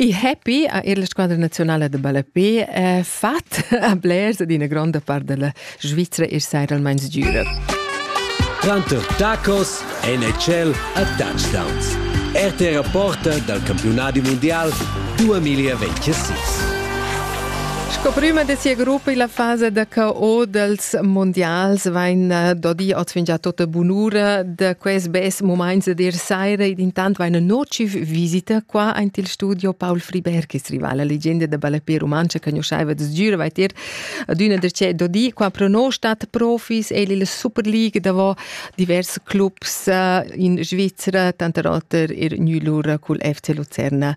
Il happy ha er la squadra nazionala da ballape eh, fat a blers ed ina gronda part della Svizra er seiralmeins giura. Quanto tacos NHL a touchdowns. RT Rapporta dal campionati mondial 2026. Sco prüma de sia gruppa illa fasa da KO dels mondials vain eh, dodi oz già tota bunura da quest bes moments de dir saira ed intant vaina nociv visita qua aint il studio Paul Friberg, is rival la legenda da balapia romancha che conosceva des gira vai dir adüna der c'è dodi qua pro no stat profis el il Super League davo divers clubs eh, in Svizzera tanter oter er Nülur cul FC Lucerna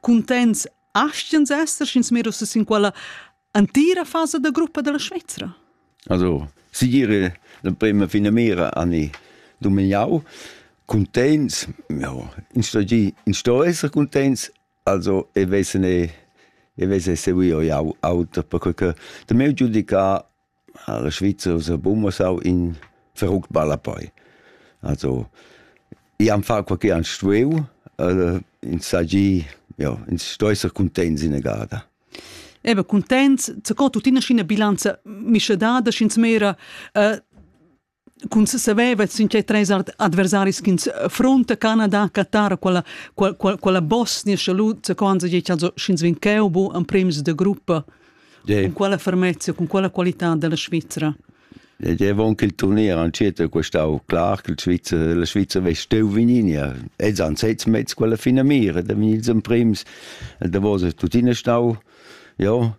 Cuntents astgens esser, sch'ins mir uss sin quella antira fasa da gruppa della Svizra? Also, sigire l'emprema fina mira an i dumignau. Contents, ja, in sto esser contents, also e wesen e e wesen seguio ja auter per che de meu giudica Alla Svizersa bumma sau in verruckt ballapei. Also i han far quai che han stuiu, ins hagi, ja, ins sto esser cuntents ina gada. Ebe cuntents, co tuttina sc'ina bilanza mischedada, sch'ins mera, Cun saveva sin tgei treis adversaris ch'ins affrunta Canada, Qatar, quella, quella, quella Bosnia salut zaconza sch'ins vegn cheu bu emprems de gruppa yeah. con quella fermezza, con quella qualità della Svizzera. Deve anche il turnier ancetta questau clar che il Svizzera, la Svizzera vei steu vininia e san sez mezz quella fina mira da vin ils emprems da vos tuttina stau ja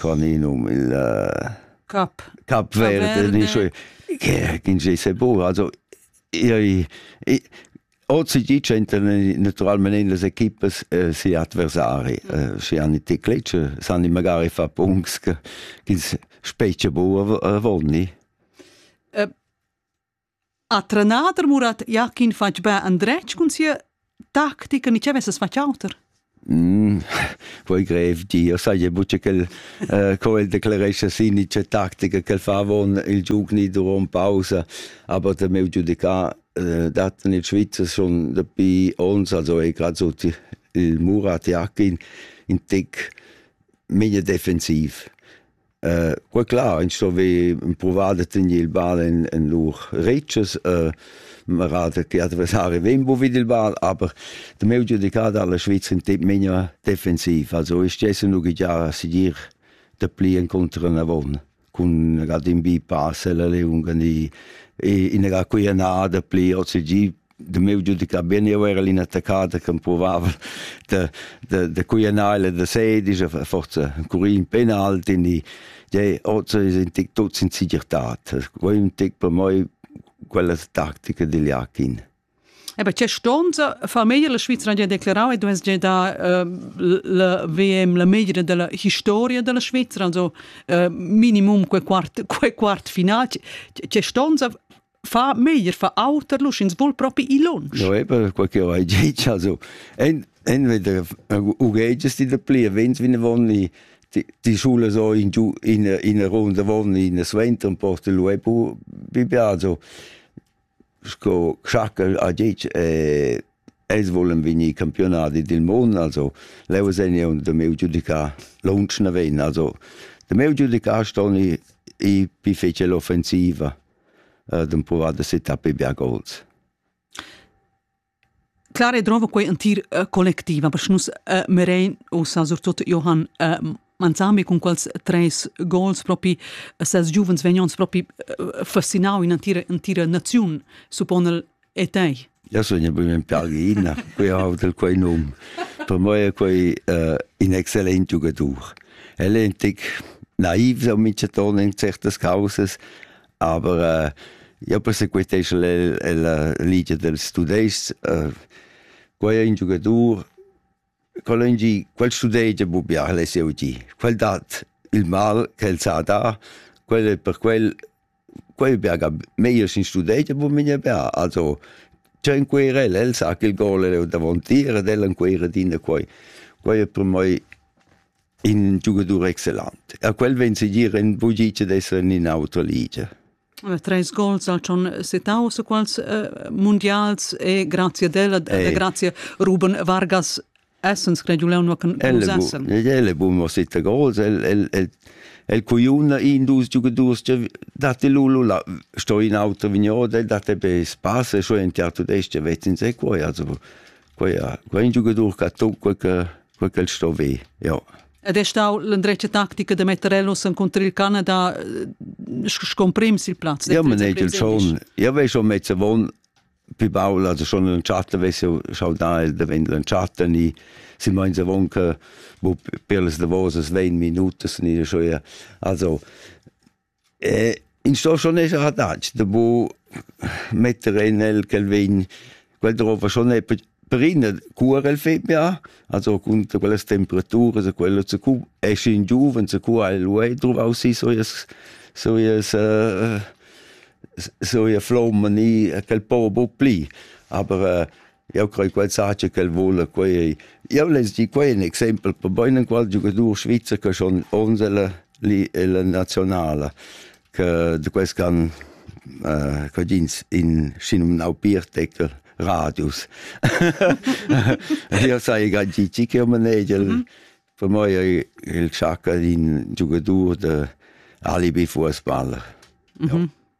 Qua ni num il Cap Cap Verde ni sche che ins ei segur also ei ozi di ch'enter naturalmein las equipas si adversari schi han i teclitsch san i magari fa punts ch'ins specie bu avon ni A trenader Murat Jakin fatg be andretg cun sia tactica ni che vesses fatg auter? Mm, voi grev di, io saje bucce quel uh, quel declaresce sì ni c'è tactica che fa avon il giugni durant pausa, aber der meu giudica uh, dat in Schweizer schon dabei uns, also è gerade so il Murat Jakin in tick mega defensiv. Uh, quei clar, ins sto ver empruvar da tener il ball en, en lur retschas. Uh, man ratet die Adversari wen wo vid il Ball, aber der meu giudicado alla Schweiz in temp menia defensiv. Also ich stesse nur già sigur de pli incontro una von con ga dimbi passel le unga ni in ga qui na de pli OCG de meu giudicar ben eu era l'inattaccata che provava de de de cuianale de sedice forza curì in penalti ni de ozza in tic tuts in sigirtat voi un tic per moi quella tactica degli Akin Ebe c'è stonza fa meglio la Svizzera ha declarato e dovesse da la VM la meglio della historia della Svizzera also minimum quel quart quel quart finale c'è stonza fa meglier fa auter lu sch'ins vul propi i lunsch. No eben quel che vai ditg also en en veder ugegis di de pli vens vin vonni die, die Schule so in in in Runde won in Swenter und porte lu e pu bibia also sco schackel a dic e es vollen vini campionati del mondo also leu sene und de meu giudica lunch na ven also de meu giudica stoni i pi fece l'offensiva d'impovar da città per biagols. Clare drova quei entir uh, collectiv, aber nus uh, merein ussa surtut Johann uh, Manzami con quels treis gols propi ses giuvens vegnons propi uh, fascinau in entira entira naziun suppon el E tei? Ja sogna bugen pergina, quei ha del quei num. Per moi è quei uh, in excellent giugadur. El è ein tic naiv so minchaton in certas causas, aber uh, ja persequitescha el la ligia dels tudescs. Uh, quei è un giugadur Quel en gi, quel studegia bu bia, el es jeu di. Quel dat il mal ch'el sa dar, quel è per quel, quel bia ga meglier sin studegia, bu minia bia. Also, tgei encuir el, el sa ch'el gol leu davontier ed el encuir adina quei. Quei è per mei in giugadur excellent. A quel vegn segir in bugice d'esser in in autra ligia. treis gols ha schon setau se quals mundials e grazie della e grazie Ruben Vargas essens creduleun nur con sessen el è bun sette gols el el el el cuiuna in dus giugadurs che date lulu la sto in auto vigno de date be spasse so in teatro d'este vetin se quoi also quei quei giugadur che tocca che quel che sto ve, ja. Ed è stau l'endretga tactica da metter el nus encontrar il Canada eh, scomprims il plaz. Ja, man ei schon. Ja, vei schon mezza von pi baul, also schon in Chatter vesse schau da da wenn in Chatter ni si mein se von che bo per les davos es 20 Minuten ni schon ja. Also E in sto schon esser adatg da bu metter en el quel vin quel drova schon è per ina cura el fet bia also cun quellas temperaturas e quello se cu è schin giuven se cu ha lu ei druvau si so ies so ies so ia flomma ni quel po bu pli aber Jau crei quel saja ch'el vula quei ei. Jau less dir quei in exempel per bein enqual giugadur svizzer che schon onsela li ella nazionala che de quels can uh, quadins in sinumnau Bierteckel radius. io sai gaggici che manegel mm -hmm. per moi è il sciacca in giugadur de alibi fußballer. Mm -hmm. ja.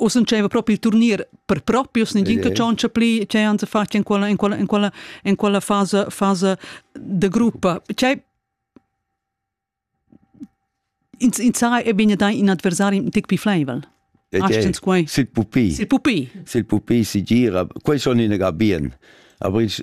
U sencheva propi il turnier per propi u nagin che tschontscha pli che han sa fatg in quella in quella in quella in quella fasa fasa de gruppa cei in in sai e bene dai in adversari un tic più fleivel Astens quei. Sil pupi. Sil pupi. Sil pupi si gira. Quei son in ga bien. Aber ich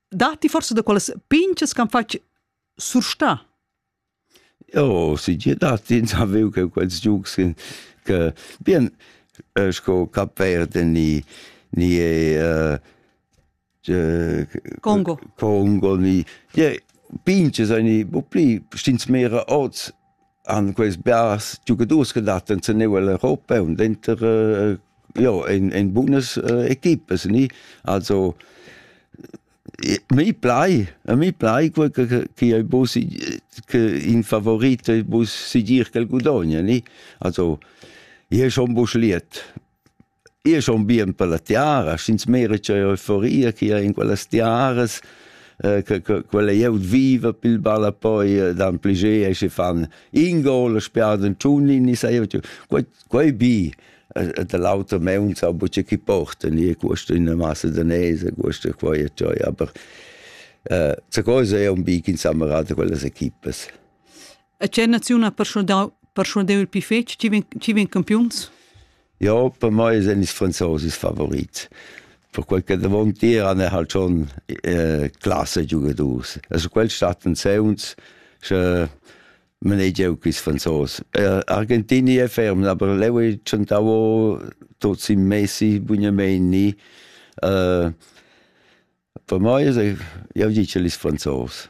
Datti forse da quelles pinches ch'han fatg surstà? Oh, si je datti ins avev che quels giugs che bien äh, sco Cap Verde ni ni äh, äh, Congo Congo ni je pinches ani bu pli stins mera oz han quels bars giugadurs che dattan sen neu un denter uh, jo in in bunas uh, equipas ni also mi plai a mi plai quel che che ei bu che in favorit bu sigir che gudogna ni also je schon busch liet Io so un bien per la tiara, sch'ins mera c'è euforia che è in quellas tiaras, eh, che, che, quella eu viva pil balla poi eh, dan pliger e si fan in gol spiaden tschunnin ni sai quei quei bi de l'auto meuns a buce chi porten e questo in una massa danese questo qua e cioi aber äh, ce cosa è un bi in sammerate quelle equipes A che naziun ha perschuadau perschuadeu il pli fetg chi vegn chi vegn campiuns? Ja, per mei sind ils Franzosen Favorit. Per quel che davon tiran è halt schon äh, klasse Giugadors. Also quel statten sei uns sche manegeu quis Franzos. Äh, Argentini è ferm, aber leu è centavo tots in Messi, Bugnameni. Äh, per mei, eu dice ils Franzos.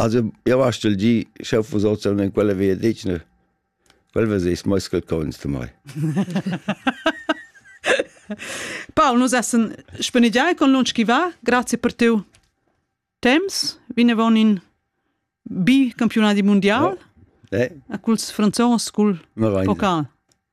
Also io vastel gi sch'eu fuss hoz in quella vegliadetgna, quel vezess meis qualcosa da mai. Paul, nus essan spanigiai con lunsch chi va, grazie per teu temps, vinavon in bi campionadi mundial, eh? a culs franzos cul Maraglia. pocal.